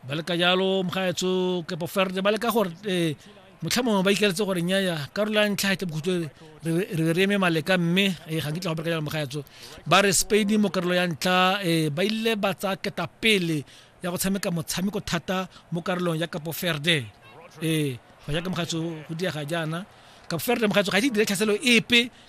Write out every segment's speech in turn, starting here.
ba le ka jalo mogaetso kepo ferde ba le ka gore um motlha mongwe ba ikeletse gore nyaya karolo ya ntlha ke bokhutlo re be re eme maleka mme um ga nkitla go bereka jalo mogaetso ba re spain mo karolo ya ntlha um ba ile ba tsaya keta pele ya go tshameka motshameko thata mo karolong ya kapo ferde um go jaaka mogaetso go diega jaana kapo ferde mogaetso ga e dire tlhaselo epe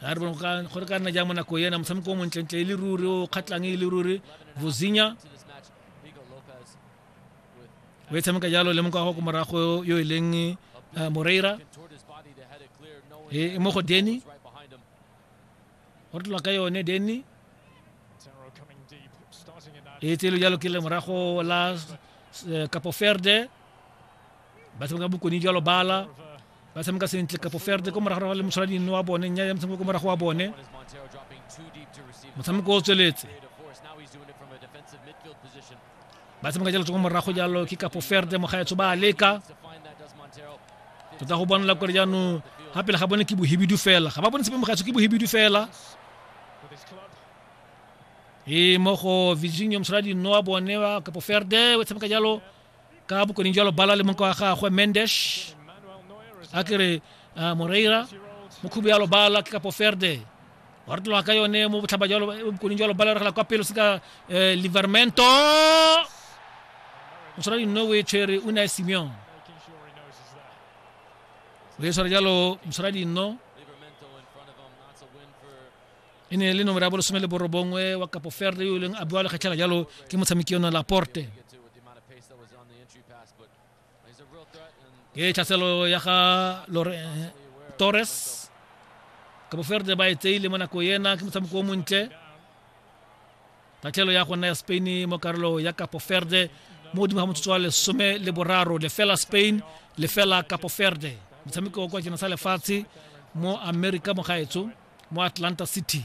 ga re bone go ka nna jang mo nako ena motshameko o montlentle e le ruri o kgatlhang e le ruri vosinya o e tshameka jalo le mokago ko morago yo e leng eh, moreira e mo go deni go tlola ka yone denny e tselo jalo ke lemorago la eh, kapo ferde ba tshameka bokone jalo bala ba tshameka sentle kapo ferde ko morago le moshwaladino wa bone nya ya motshameko ko morago wa bone motshameko o tsweletse ba tshameka jalo tsoko morago jalo ke kapo ferde mogaetsho ba leka tota go bonela kore jaanong ga pele ga bone ke bohibidu fela ga ba bone sepe mogaetsho ke bohibidu fela e mo go virginia mosala dino wa bone wa kapo ferde o tshameka jalo ka bokoning jalo bala le monka wa gagwe mendes a kere ah, moreira mokhubu yalo bala ke kapo ferde wa re tloga ka yone mo botlhaba jalo bokoning jalo bala regela kwa pelo se ka eh, livermento o tshwara dino o e tshwere o ne a simeon o e tshwara jalo motshwara dino e ne e le nomoro ya bolesome le borobongwe wa kapo ferde yo e leng a bua lekgetlhela jalo ke motshameki yone laporte ke tlhaselo ya ga eh, torres kabo ferde ba e tseile mo nako ena ke motshameko o montle tatlhelo ya go nna ya spain mo karolo ya kapo ferde mo godimo ga motsotso wa lesome le boraro lefela spain lefela kapo ferde motshameko kwa jena sa lefatshe mo america mo gaetso mo atlanta city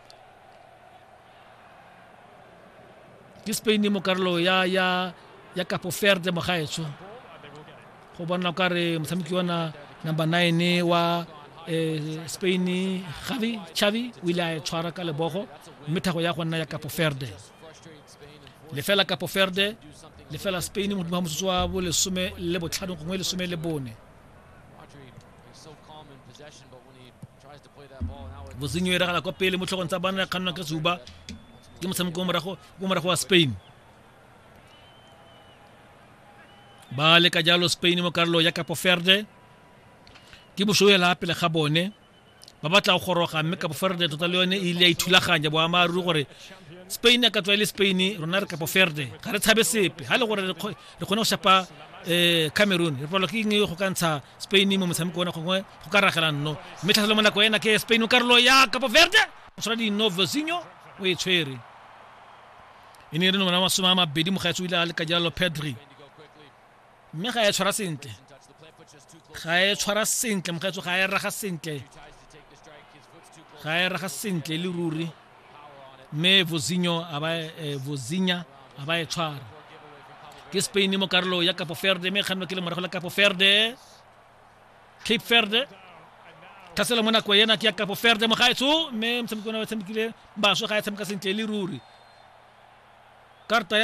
ke spain mo karolo ya ya ya kapo ferde mo gaetsho go bona ka re motshameki ona number 9 wa eh, spain gavi chavi o ile a tshwara ka lebogo mme thago ya go nna ya kapo ferde lefela kapo ferde lefela spain modimo wa motsotso wa bolesome le botlhano gongwe lesome le bone bosenyo e ragala kwa pele mo tlhogong tsa bana ya kgannwa ka suba ke motshameko o morago wa spain ba leka jalo spain mo karolo ya capo ferde ke bosoela pele ga bone ba batla go goroga mme capo ferde tota le yone e ile ya ithulaganya boamaaruri gore spain a ka tswa e le spain rona re capo ferde ga re tshabe sepe ga le gore re kgone go shapa um cameroon re palwa ke eng go ka ntsha spain mo motshameko ona gongwe go ka ragela nno mme tlhatlhelo mo nako ena ke spain o karolo ya capo verde o tshwara dino vosinho o e tshwere e ne e re nomana masome a mabedi mogaetsi o ile a le ka jalo pedri mme ga e tshwara sentle ga e tshwara sentle mogaetso ga e raga sentle ga e raga sentle le ruri mme vosinho a ba eh, vosinya a ba e tshwara ke spain mo karolo ya capo verde mme e kgannwa ke le morago la capo verde cape verde ka sela mo nako ena ke ya kapo verde mo gaetsho mme motshameki ona ba tshamekile baswe ga e tshameka sentle e le ruri karta ya